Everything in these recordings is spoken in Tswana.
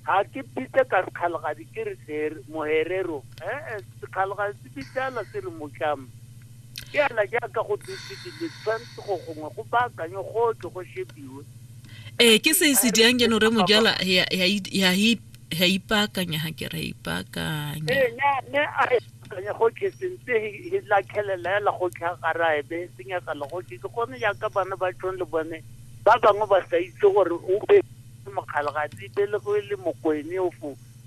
ga ke pitse ka sekgalagadi ke re tlere moherero ee sekgalagadi se bitsala se re motlamo ke ela jaaka go dutse dile tshwanetse go gongwe go baakanye gotlhe go shebiwe ee ke se se dirang ke no re mojala ya ipaakanya ga ke ra ipaakanya ee ne a ipaakanya gotlhe sentse e lakhelela ela gotlhe a gara ebe senyakala gotlhe ke gone jaaka bana ba tshone le bone ba bangwe ba sa itse gore o be Ke Mokgalagadi Belegwe le Mokoene of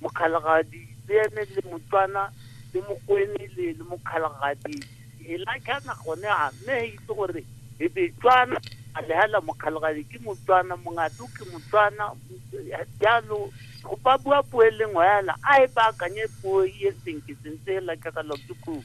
Mokgalagadi Beene le Motswana le Mokoene le le Mokgalagadi hela kana gone a mme he itse gore e be Tswana a le hala Mokgalagadi ke Motswana Mongatu ke Motswana jalo go ba bua puo e le nngwe hela a e baakanye puo e senke sentse hela jaaka Lord Cook.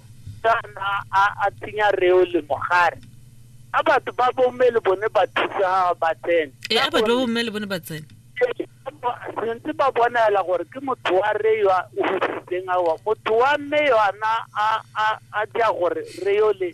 Kana a a tsenya reo le mogare. A batho ba bomme le bone ba thusa ba tsene. E a batho ba bomme le bone ba tsene. Sentse ba bonela gore ke motho wa re yo o husitseng awa. Motho wa mme yona a a a dia gore re yo le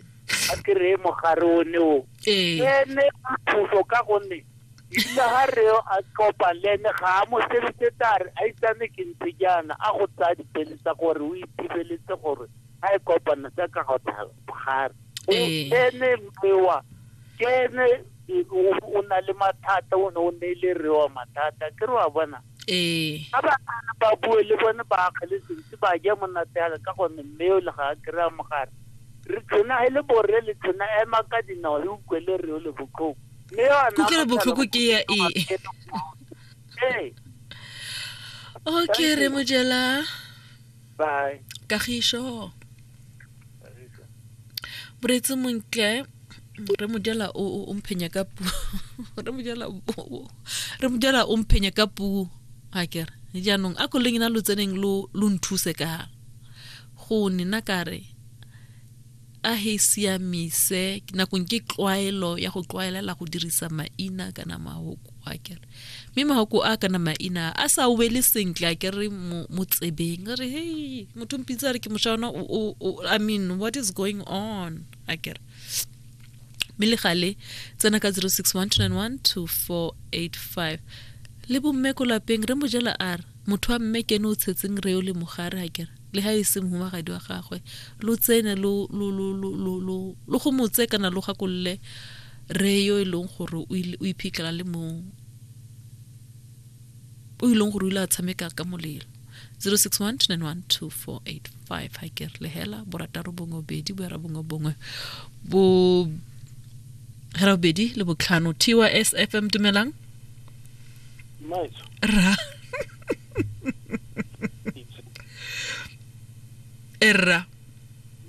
a kry-e mogare one o. Ee. Ene thuso ka gonne ebile ga re a tlopa le ene ga a mo sebetse tare a itsane ke ntse jaana a go tsaya dipele tsa gore o ithibeletse gore a e kopana tsa ka go thagare Ee. ene mmewa ke ene e, o- o na le mathata o ne o ne le rewa mathata ke re wa bona ee ga ba kana ba bue le bone ba akgele sentse ba ja monate yaka ka gonne mme o le ga a kry-a mogare re tshwenagele borre le tshwena ema ka dinao le utlwele reo le botlhoko kutlwelo botlhoko ke ya e okay re mojela kagišo boretse montle re mojela o mphenya ka puo re mojela re mojela o mphenya ka puo a kere jaanong a koleng na lo tseneng lo nthuse ka go nena kare a he siamise nakong ke tlwaelo ya go tlwaelela go dirisa maina kana mahoko a kere mme mahoko a kana maina a sa wele sentle a kere mo tsebeng re hey motho mpitse a re ke mosha ona i mean what is going on a kere mme le gale tsena ka 0612912485 le bomme ko lapeng re mojela a re motho wa mme kene o tshetseng re o le mogare a kere le ga e se mohumagadi wa gagwe lo tsene lo go motse kana lo gakolole re yo e leng gore o iphitlhela le mo o e leng gore o ile a tshameka ka molelo 0612912485 ga ke re lehela borataro bongwe bobedi boera bongwe bongwe bo hera bobedi le botlhano tys fm dumelang ra e rra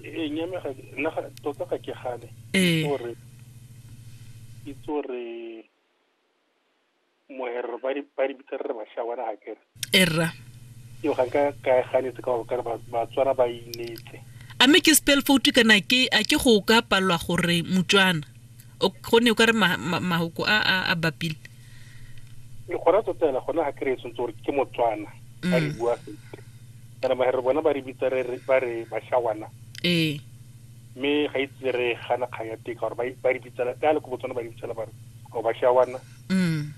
ee nyame ga nna ga- tota ga ke gane Ee. Itse gore itse gore moherero ba di- ba di bitsa re re bashawana ga kere e rra eo ga nka ka e ganetse ka gore ka re ba- batswana ba inetse a mme ke spell foutu kana ke a ke go ka palelwa gore motswana gonne o ka re mahoko a a bapile le gona tota ena gona ga kry-e tshwanetse gore ke motswana a re mm. bua sentle kana ba re bona ba re bitsa ba re bashawana ee mme ga itse e re gana kgang ya teka gore ba re bitsela ka le ko botswana ba re bitsela ba re o bashawana mm.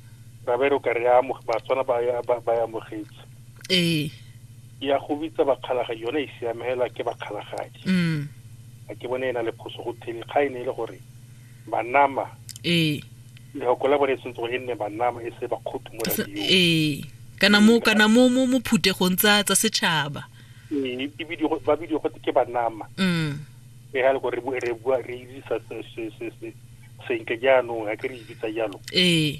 ra ba e re o ka re batswana ba ya amogetse ee Ya go bitsa bakgalagadi yone e siame hela ke bakgalagadi mm. a ke bone e na le phoso go theni ga e ne e le gore banama ee lehoko la bone e tshwanetse gore e nne banama e se bakgotho mo radio ee kana mo kana mo mo mo phutegong tsa tsa setšhaba ee e bidio ba bidio go ke banama mm e ha le gore re bua re itse sa se se se se senke jaanong a ke re itse jalo ee